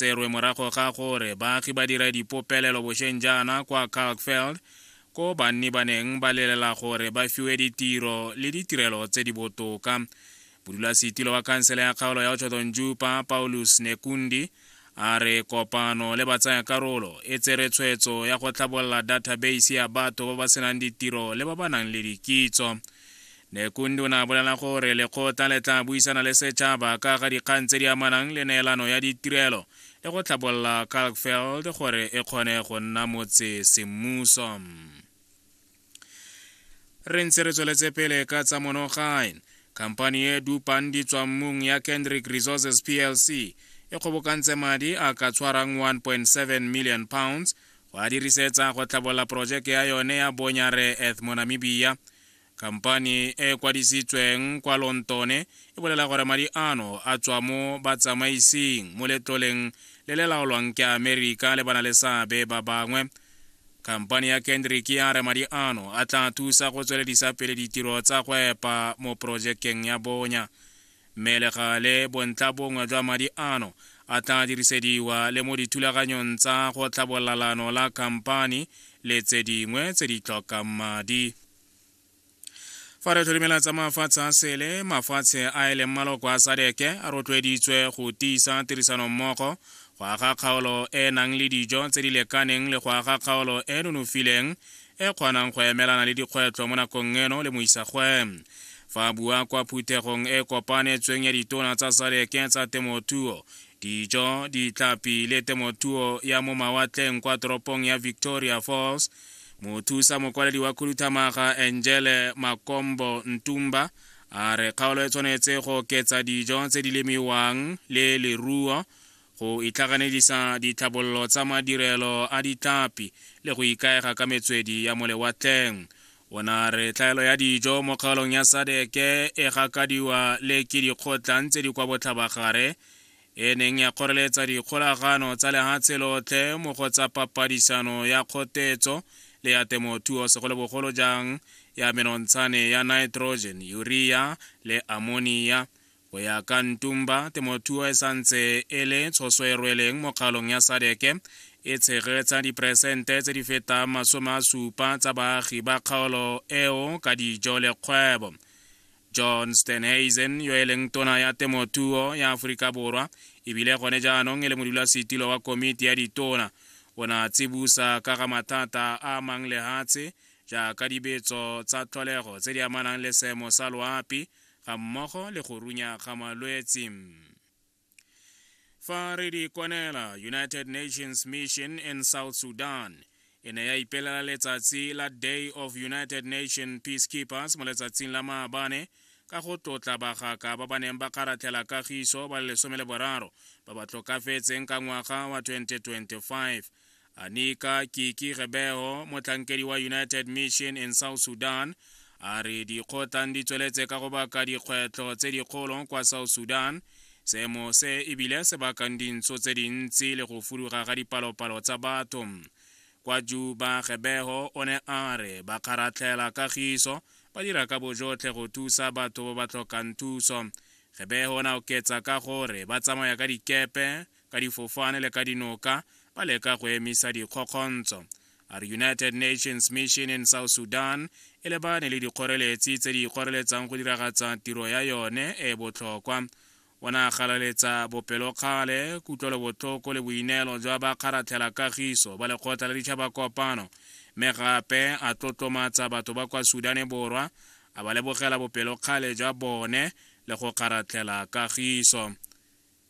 tserwe morago ga gore baagi ba dira dipopelelo bosheng jaana kwa kalkfeld ko banni ba neng ba lelela gore ba fiwe ditiro le ditirelo tse di botoka modulasetilo wa khansele ya kgaolo ya otshotonjupa paulus nekundi a re kopano le batsaya karolo e tsere tshwetso ya go tlhabolola database ya batho ba ba senang ditiro le ba ba nang le dikitso Nekundu o ne a bolela gore lekgotla le tla buisana le setšhaba ka ga dikgang tse di amanang le neelano ya ditirelo le go tlhabolola Kalkveld gore e kgone go nna motse semmuso. Re ntse re tsweletse pele ka tsa monogae. Khamphani e dupang ditswammung ya Kendrick Resources plc e kgobokantse madi a ka tshwarang 1.7 million pounds go a dirisetsa go tlhabolola porojeke ya yone ya Bonyare Ethmonamibia Kampani e e kwadisitsweng kwa Lontone e bolela gore madi ano a tswa mo batsamaising mo letloleng le le laolwang ke Amerika le bana le seabe ba bangwe. Kampani ya Kendrick ya re madi ano a tla thusa go tsweledisa pele ditiro tsa go epa mo porojekeng ya bonya. Mme le gale, bontlhabongwe jwa madi ano a tla dirisediwa le mo dithulaganyong tsa go tlhabolola leano la khamphani le tse dingwe tse di tlhokang madi. Fa re tlholimela tsa mafatshe a sele, mafatshe a e leng maloko a sadeke a rotloeditswe go tiisa tirisanommogo, go aga kgaolo e e nang le dijo tse di lekaneng le go aga kgaolo e e nonofileng e kgonang go emelana le dikgwetlho mo nakong eno le moisagwe fa a bua kwa phuthegong e kopanetsweng ya ditona tsa sadeke tsa temothuo dijo ditlhapi le temothuo ya mo mawatleng kwa toropong ya victoria falls mothusa mokwaledi wa khuduthamaga angele makombo ntumba a re kgaolo e tshwanetse go oketsa dijo tse di lemiwang le leruo go itlhaganedisa ditlhabololo tsa madirelo a ditlapi le go ikaega ka metswedi ya molewatleng o na re tlhaelo ya dijo mo kgaolong ya sadeke e gakadiwa le ke dikgotlang tse di kwa botlhabagare e neng ya kgoreletsa dikgolagano tsa lehatshe lotlhe mo go tsa papadisano ya kgotetso le ya temothuo segolobogolo jang ya menontshane ya nitrogen urea le ammonia Go ya ka Ntumba, temothuo e santse e le tshoso e rweleng mo kgalong ya sadeke e tshegetsa diperesente tse di fetang masome a supa tsa baagi ba kgaolo eo ka dijo le kgwebo john stenhazen yo e leng tona ya temothuo ya aforika borwa ebile gone jaanong e le modulasetilo wa komiti ya ditona o ne a tsibusa ka ga mathata a amang lehatshe jaaka dibetso tsa tlholego tse di amanang le seemo sa loapi ga mmogo le go runya ga malwetsi. Fa re di kwanela United Nations Mission in South Sudan, e ne ya ipelela letsatsi la Day of United Nations Peacekeepers mo letsatsing la maabane ka go tlotla bagaka ba ba neng ba kgaratlhela kagiso ba le lesome le boraro ba ba tlokafetseng ka ngwaga wa 2025 Anika Kiki Rebeho, motlhankedi wa United Mission in South Sudan, a re dikgotlang di tsweletse ka go baka dikgwetlho tse dikgolo kwa South Sudan seemo se ebile se bakang dintso tse dintsi le go fuduga ga dipalopalo tsa batho kwa juba gebego o ne a re ba kgaratlhela kagiso ba dira ka bojotlhe go thusa batho ba ba tlhokang thuso gebego o ne a oketsa ka gore ba tsamaya ka dikepe ka difofane le ka dinoka ba leka go emisa dikgokgontso a re united nations mission in south sudan e lebane le dikgoreletsi tse di ikgoreletsang go diragatsa tiro ya yone e e botlhokwa o ne a galaletsa bopelokgale kutlwelobotlhoko le boineelo jwa ba kgaratlhela kagiso ba lekgotla la ditšhaba kopano mme gape a tlotlomatsa batho ba kwa sudane borwa a ba lebogela bopelokgale jwa bone le go kgaratlhela kagiso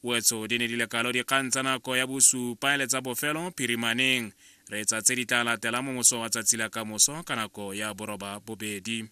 Wetso di ne di le kalo dikgang tsa nako ya bosupa le tsa bofelo phirimaneng. Re tsa tse di tla latelang mo moso wa tsatsi la kamoso ka nako ya boroba bobedi.